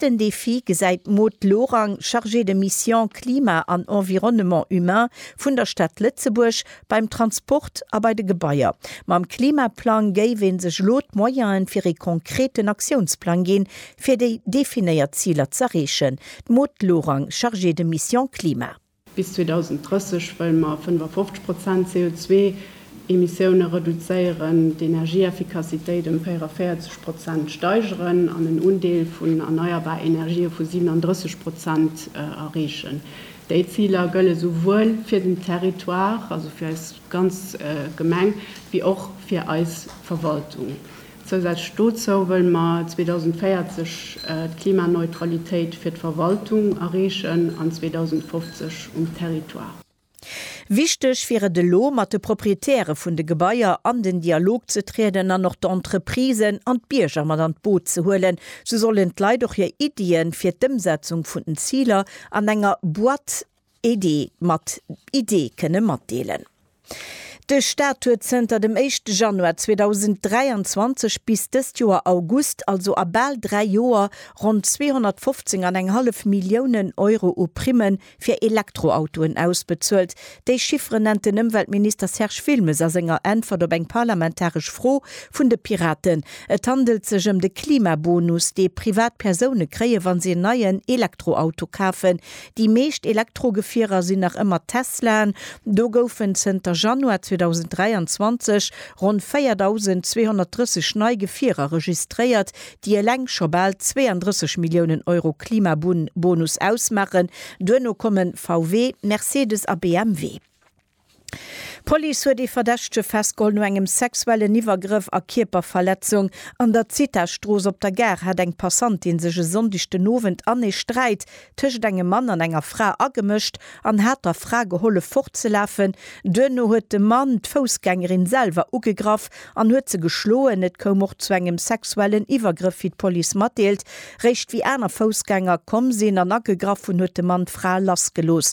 Den Defi gesäit d'Maude Lorang, Chargée de mission Klima an Environnement humain vun der Stad Lëtzebuerg, Beim Transport a bei de Gebaier. Mam Klimaplang géif ee sech elo d'Moyene fir ee konkreten Aktiounsplang ginn, fir déi definéiert Ziler z'erreechen. D'Maude Lorang, Chargée de mission Klima. Bis 2030 wëlle mer 55 Prozent CO2-Emissioune reduzéieren, d'Energieeffikassitéit ëm 44 Prozent steigeren an en Undeel vun erneierbar Energië vu 37 Prozent erreechen. Déi Ziler gëlle souwuel fir den Territoire, also fir eis ganz Gemeng, wéi och fir eis Verwaltung. Zousätzlech dozou wëlle mer 2040 d'Klimaneutralitéit fir d'Verwaltung erreechen an 2050 um Territoire. Wichteg wier et elo, mat de Proprietäre vun de Gebaier an den Dialog ze trieden an och d'Entreprisen an d'Bierger mat an d'Boot ze huelen. Sou sollen d'Leit och hir Iddie fir d'Ëmsetzung vun den Ziler an enger Boîte Iddi mat Idee kënne matdeelen. De Staat huet zënter dem éischte Januar 2023 bis dëst Joer August, also a bal dräi Joer, ronn 215 an eng hallef Milliounen Euro u Primme fir Elektroautoen ausbezuelt. Déi Chiffere nennt den Ëmweltminister Serge Wilmes a senger Äntwert op eng parlamentaresch Fro vun de Piraten. Et handelt sech ëm de Klimabonus, dee privat Persoune kréien, wa se en neien Elektroauto kafen, Déi meescht Elektrogefierer sinn nach ëmmer Teslaen. Do goufen zënter Januar 2023 ronn 4.230 nei Gefierer registréiert, déi eleng scho bal 32 Milliounen Euro Klimabonus ausmaachen. Duerno kommen VW, Mercedes a BMW. D'Police huet ee Verdächtege festgeholl no engem sexuellen Iwwergrëff a Kierperverletzung. An der Zithastrooss op der Gare hat eng Passantin sech e Sonndeg den Owend an ee Sträit tëschent engem Mann an enger Fra agemëscht an hat der Fra gehollef fortzelafen. Duerno huet de Mann d'Foussgängerin selwer ugegraff an huet se geschloen. Et koum och zu engem sexuellen Iwwergrëff, wéi d'Police matdeelt. Réischt wéi aner Foussgänger komm sinn an agegraff hunn, huet de Mann d'Fra lassgelooss.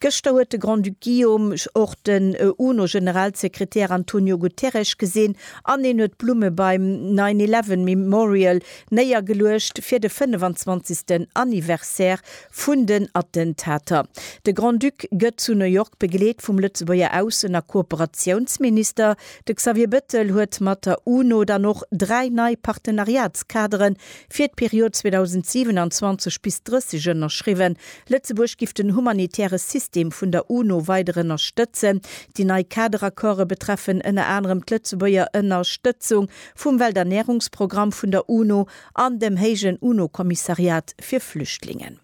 Gëschter huet de Grand-Duc Guillaume och den UNO-Generalsekretär Antonio Guterres gesinn an en huet Blumme beim Nine Eleven Memorial néiergeluecht fir de 25. Anniversaire vun den Attentater. De Grand-Duc gëtt zu New York begleet vum Lëtzebuerger Aussen a Kooperatiounsminister. De Xavier Bettel huet mat der UNO dann och dräi nei Partenariatskadere Fir d'Period 2027 bis 30 ënnerschriwwen. Lëtzebuerg giff den humanitäre System vun der UNO weider ënnerstëtzen. Déi nei Kaderaccorde betreffen ënner anerem d'Lëtzebuerger Ënnerstëtzung vum Welternärungsprogramm vun der UNO an dem héijen UNO-Kommissariat fir Flüchtlingen.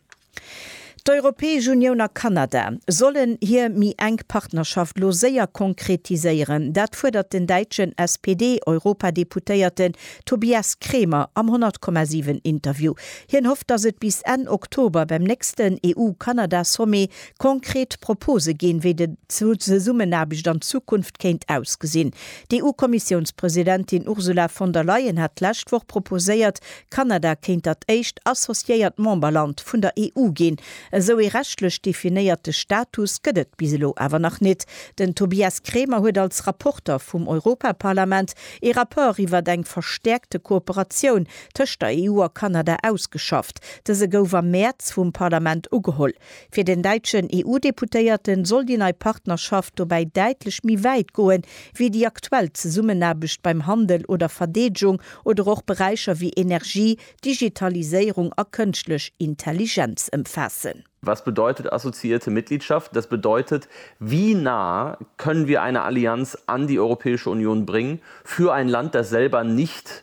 D'Europäesch Unioun a Kanada sollen hir méi enk Partnerschaft lo séier konkretiséieren. Dat fuerdert den däitschen SPD-Europadeputéierte Tobias Kremer am 100,7 Interview. Hien hofft, datt et bis Enn Oktober beim nächsten EU-Kanada-Sommet konkret Propose ginn, wéi de Zesummenaarbecht an Zukunft kéint ausgesinn. D'EU-Kommissiounspresidentin Ursula von der Leyen hat d'lescht Woch proposéiert, Kanada kéint dat éischt associéiert Memberland vun der EU ginn. Esou ee rechtlech definéierte Status gëtt et bis elo awer nach net. Den Tobias Kremer huet als Rapporter vum Europaparlament ee Rapport iwwert eng verstäerkte Kooperatioun tëscht der EU a Kanada ausgeschafft. Dëse gouf am Mäerz vum Parlament ugeholl. Fir den däitschen EU-Deputéierte soll déi nei Partnerschaft dobäi däitlech méi wäit goen, wéi déi aktuell Zesummenaarbecht beim Handel oder Verdeedegung oder och Beräicher wéi Energie, Digitaliséierung a kënschtlech Intelligenz ëmfaassen. Was bedeutet assoziierte Mitgliedschaft? Das bedeutet, wie nah können wir eine Allianz an die Europäische Union bringen für ein Land, das selber nicht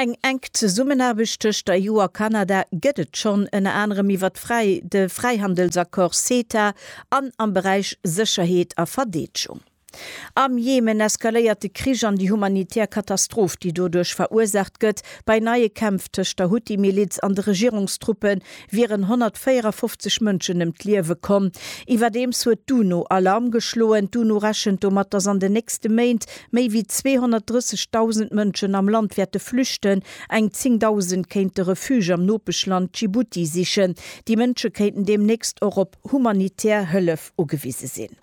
Eng enk Zesummenaarbecht tëscht der EU a Kanada gëtt et schonn, ënner anerem iwwert de Fräihandelsaccord CETA an am Beräich Sécherheet a Verdeedgung. Am Jemen eskaléiert de Krich an déi humanitär Katastroph, déi doduerch verursaacht gëtt, bei neie Kämpf tëscht der Huthi-Miliz an de Regierungstruppen wieren 154 Mënschen ëm d'Liewe komm. Iwwerdeems huet d'UNO Alarm geschloen. D'UNO rechent domat, datt an den nächste Méint méi wéi 230.000 Mënschen am Land wäerte flüchten. Eng 10.000 kéinte Refuge am Nopeschland Djibouti sichen. Déi Mënsche kéinten deemnächst och op humanitär Hëllef ugewise sinn.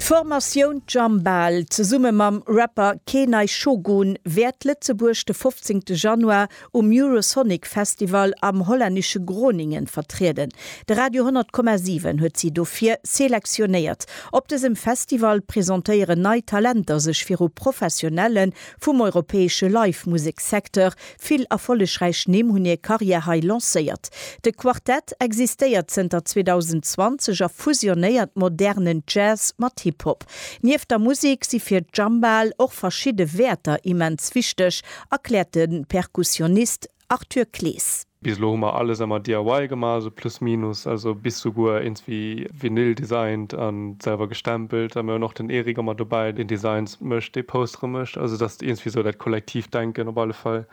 D'Formatioun Jambal, zesumme mam Rapper Keenay Shogun, wäert Lëtzebuerg de 15. Januar um Eurosonic Festival am hollännesche Groningen vertrieden. De Radio 100,7 huet si dofir selektionéiert. Op dësem Festival presentéieren nei Talenter sech viru Professionelle vum europäesche Live-Musek-Secteur. Vill erfollegräich Nimm hunn hir Karriär hei lancéiert. De Quartett existéiert zënter 2020 a fusionéiert modernen Jazz mat Hip-Hop. Nieft der Musek si fir d'Jambal och verschidde Wäerter immens wichteg Erkläert de Perkussionist Arthur Clees. Bis elo hu mer alles emmer DIY gemaach, also plus minus, also bis souguer eens wéi Vinyl designt a selwer gestempelt. A mir hunn och den Eric emmer dobäi, deen Designs mécht, dee Postere mécht, also dass eens wéi esou dat Kollektivdenken op alle Fall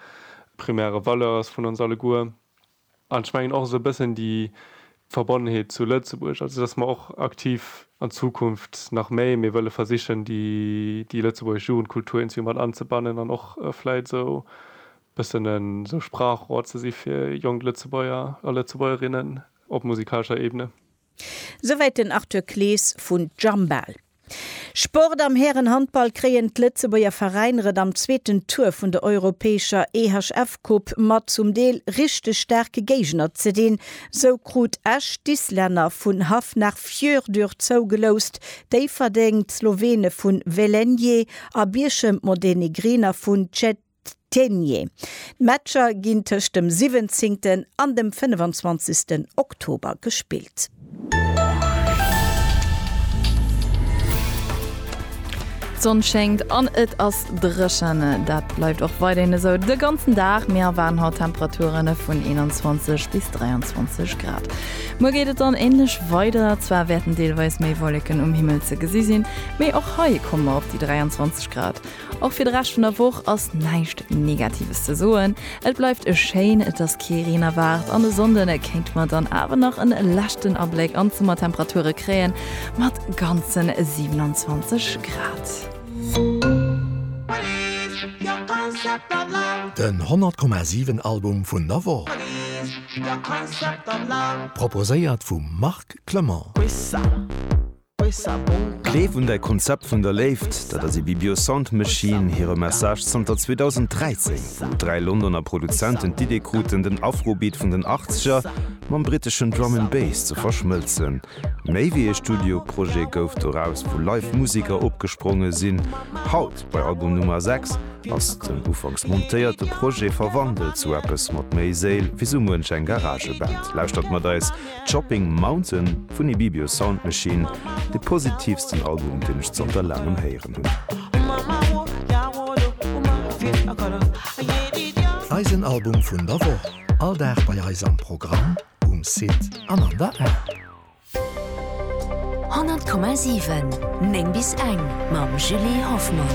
primäre Valeur ass vun ons alleguer. An ech mengen och esou e bëssen déi Verbonnenheet zu Lëtzebuerg, also dass mer och aktiv an Zukunft nach méi méi wëlle versichen, déi lëtzebuergesch Jugendkultur irgendwie mat anzebannen an och vläit esou e bëssen esou Sprachrohr ze si fir jonk Lëtzebuerger a Lëtzebuergerinnen op musikalescher Ebene. Souwäit den Arthur Clees vun Jambal. Sport, Am Härenhandball kréien d'Lëtzebuerger Veräiner et am zweeten Tour vun der europäescher EHF-Coupe mat zum Deel richteg staarke Géigner ze dinn. Sou krut Esch d'Islänner vun Hafnarfjörður zougeloust, Déifferdeng d'Slowene vu Velenje a Bierchem d'Montenegriner vun Cetinje. D'Teniers. D'Matcher ginn tëscht dem 17 an dem 25 Oktober gespillt. D'Sonn schéngt an et ass dréchen. Dat bleift och weiderhin esou de ganzen Dag. Mir erwaarden haut Temperature vun 21 bis 23 Grad. Muer geet et dann änlech weider, zwar wäerten deelweis méi Wolleken um Himmel ze gesi sinn, mee och hei komme mer op déi 23 Grad. Och fir de Rescht vun der Woch ass näischt Negatives ze soen. Et bleift e schéin, et ass kee Reen erwaart an e Sonnden kéinte mer dann awer nach e leschten Abléck an d'Summertemperature kréien, mat ganze 27 Grad. Den 100,7 Album vun der Woch, proposéiert vum Marc Clement. Gleef un däi Konzept vun der Léift, dat ass ee Bibio Sound Machine hire Message zanter 2013, wou dräi Londoner Produzenten d'Idee kruten, den Afrobeat vun den Achtzeger mam briteschen Drum and Bass ze verschmëlzen. Méi wéi ee Studioprojet gouf doraus, wou live Museker opgespronge sinn. Haut, bei Album Nummer 6, ass den ufanks montéierte Projet verwandelt zu eppes mat méi Séil wéi sou muench eng Garageband. Lauschtert mat eis! Chopping Mountain vun Ibibio Sound Machine, de positiivsten Album deen ech zanter laangem héieren hunn. Eisen Album vun der Woch, all Dag bei eis am Programm, um Site an an der App. 100,7 9 bis eng mam Julie Hoffmann.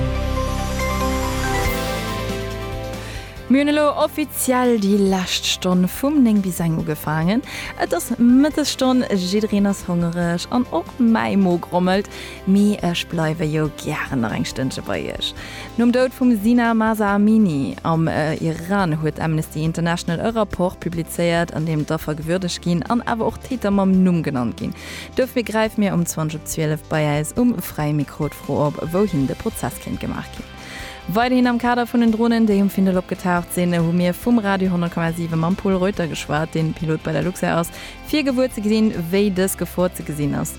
Mir hunn elo offiziell déi lescht Stonn vum 9 bis 1 ugefaangen. Et ass Mëttesstonn, jiddereen ass hongereg an och mäi Mo grommelt, mee ech bleiwe jo gären nach eng Stënnche bei iech. Nom Doud vum Zina Mahsa Amini am Iran huet Amnesty International e Rapport publizéiert, an deem d'Affer gewürdegt ginn an awer och d'Täter mam Numm genannt ginn. Dofir gräife mir um 20 op 12 bei äis um Fräie Mikro d'Fro op, wouhin de Prozess kéint gemaach ginn. Weiderhin am Kader vun den Dronen, déi um Findel opgetaucht sinn, hu mir vum Radio 10,7 mam Paul Reuter geschwat, deen Pilot bei der Luxair ass, fir gewuer ze gesinn, wéi dës Gefor ze gesinn ass.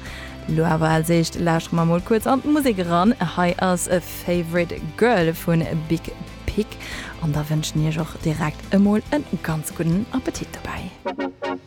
Lo awer als éischt lauschtere mer mol kuerz an d'Musek eran. Hei ass Favorite Girl vu Big Pig an da wënschen Iech och direkt emol e ganz gudden Appetit dobäi.